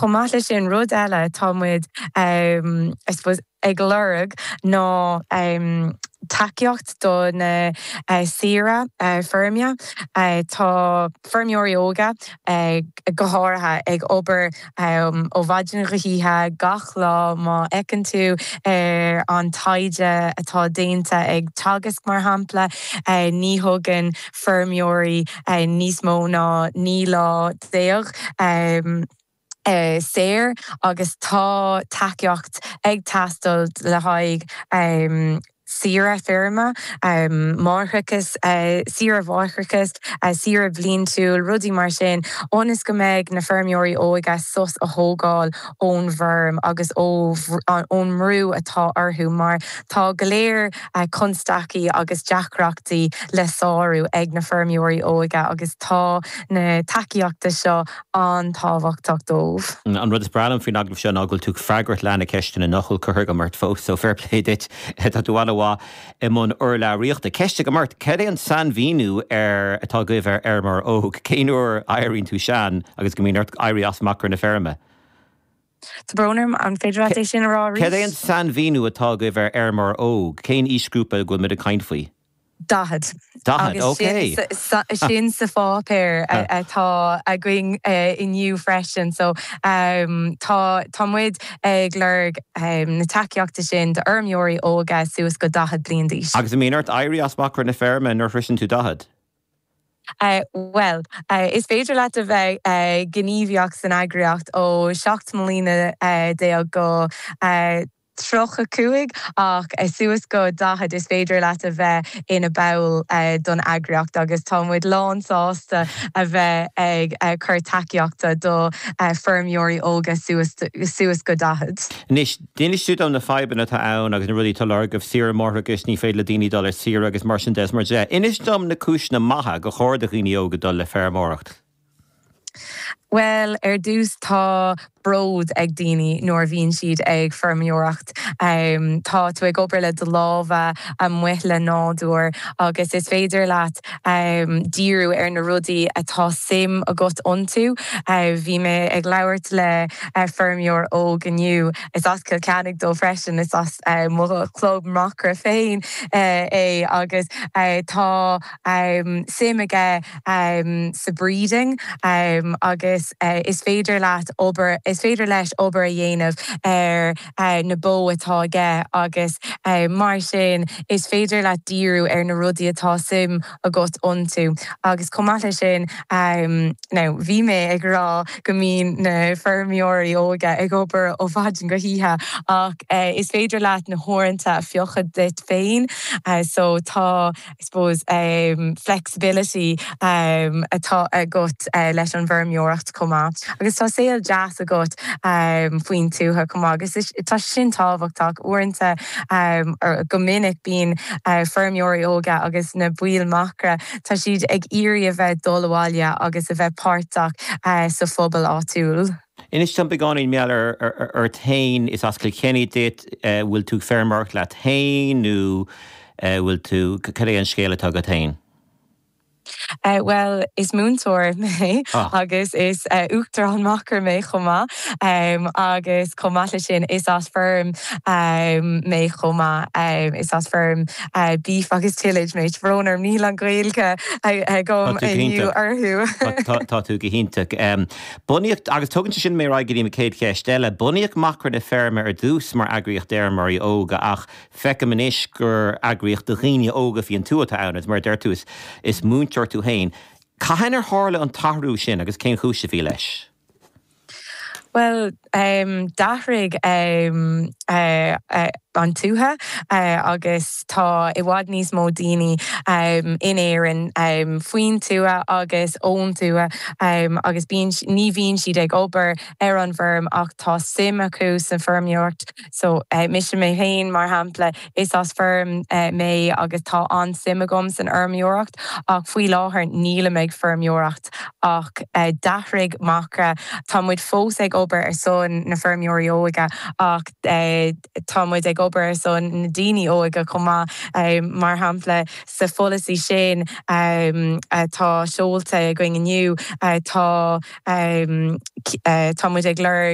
Chomh maith leis sin, rud eile atá muid I suppose ag lorg ná tacaíocht do na saoirí feirme. Tá feirmeoirí óga go háirithe ag obair ó mhaidin go hoíche gach lá. Má fheiceann tú ar an taighde atá déanta ag Teagasc mar shampla, ní thugann feirmeoirí níos mó ná naoi lá déag saor agus tá tacaíocht ag teastáil le haghaidh saoire feirme, máithreachas, saoire mháithreachais, saoire bhliantúil, rudaí mar sin, ionas go mbeidh na feirmeoirí óga sos a thógáil ón bhfeirm agus ón mbrú atá orthu mar tá go leor constaicí agus deacrachtaí le sárú ag na feirmeoirí óga agus tá na tacaíochtaí seo an-tábhachtach dóibh. An rud is breá liom faoin agallamh seo ná go bhfuil tú ag freagairt leath de na ceisteanna nach bhfuil curtha agam ort fós, so fair play duit, tá tú an-mhaith i mbun urlabhraíochta. Ceist agam ort, cad é an sainmhíniú atá agaibh ar fheirmeoir óg? Cén uair a éiríonn tú sean agus go mbíonn ort éirí as Macra na Feirme? Tá brón orm an féidir leat é sin a rá arís? Cad é an sainmhíniú atá agaibh ar fheirmeoir óg? Cén aoisghrúpa a bhfuil muid ag caint faoi? Daichead. Daichead, ok. Agus sin sa pháipéar atá againn inniu freisin. So tá muid ag lorg na tacaíochtaí sin d'fheirmeoirí óga suas go daichead bliain d'aois. Agus an mbíonn ort éirí as Macra na Feirme nuair a shroiseann tú daichead? Bhuel, is féidir leat a bheith gníomhach san eagraíocht ó seacht mbliana déag go tríocha cúig, ach suas go daichead, is féidir leat a bheith ina ball don eagraíocht agus tá muid lán sásta a bheith ag cur tacaíochta do feirmeoirí óga suas go daichead. Anois, D'inis tú dom na fadhbanna atá ann agus na rudaí atá á lorg agaibh, saoire mháithreachais, ní féidir le daoine dul ar saoire agus mar sin de is mar de. Inis dom na cúiseanna maithe gur chóir do dhaoine óga dul le feirmeoireacht. Bhuel, ar dtús tá bród ag daoine nuair a bhíonn siad ag feirmeoireacht. Tá tú ag obair le do lámha, amuigh le nádúr agus is féidir leat díriú ar na rudaí atá suim agat iontu. Bhí mé ag labhairt le feirmeoir óg inniu, is as Cill Chainnigh dó freisin, is as mo chlub Macra féin é agus tá suim aige sa breeding agus is féidir leat, is féidir leis obair a dhéanamh ar. na bó atá aige agus mar sin is féidir leat díriú ar na rudaí atá suim agat iontu agus chomh maith le sin now bhí mé ag rá go mbíonn na feirmeoirí óga ag obair ó mhaidin go hoíche ach is féidir leat na huaireanta a phiocadh duit féin so tá I suppose, flexibility atá agat leis an bhfeirmeoireacht chomh maith agus tá saol deas agat faoin tuath chomh maith agus tá sé sin tábhachtach. Uaireanta, go minic, bíonn feirmeoirí óga agus na baill macra, tá siad ag iarraidh a bheith dul abhaile agus a bheith páirteach sa phobal áitiúil. Inis dom beagáinín mar gheall ort fhéin. Is as Cill Chainnigh duit. Bhfuil tú feirmeoireacht leat fhéin nó bhfuil tú, cad é an scéal atá agat fhéin? Bhuel, is múinteoir mé agus is Uachtarán Macra mé chomh maith agus chomh maith leis sin is as feirm mé chomh maith. Is as feirm beef agus tillage mé. Tá brón orm, níl an Ghaeilge agam inniu orthu. Tá tú go hiontach. Bunaíodh, agus tugann sé sin mé ar aghaidh go dtí mo chéad cheist eile, bunaíodh Macra na Feirme ar dtús mar eagraíocht d'fheirmeoirí óga ach feicim anois gur eagraíocht do dhaoine óga faoin tuath atá ann agus mar a deir tú, is múinteoir tú féin. Cathain ar tharla an t-athrú sin agus cén chúis a bhí leis? Bhuel, D'athraigh an tuath agus tá i bhfad níos mó daoine in Éirinn faoin tuath agus ón tuath agus ní bhíonn siad ag obair ar an bhfeirm ach tá suim acu san fheirmeoireacht. So, mise mé féin, mar shampla, is as feirm mé agus tá an-suim agam san fheirmeoireacht ach faoi láthair nílim ag feirmeoireacht. Breatimeacht ach d'athraigh Macra, tá muid fós ag obair ar son na feirmeoirí óga ach tá muid ag obair ar son na daoine óga chomh maith. Mar shampla, sa pholasaí sin atá seolta againn inniu, tá muid ag lorg,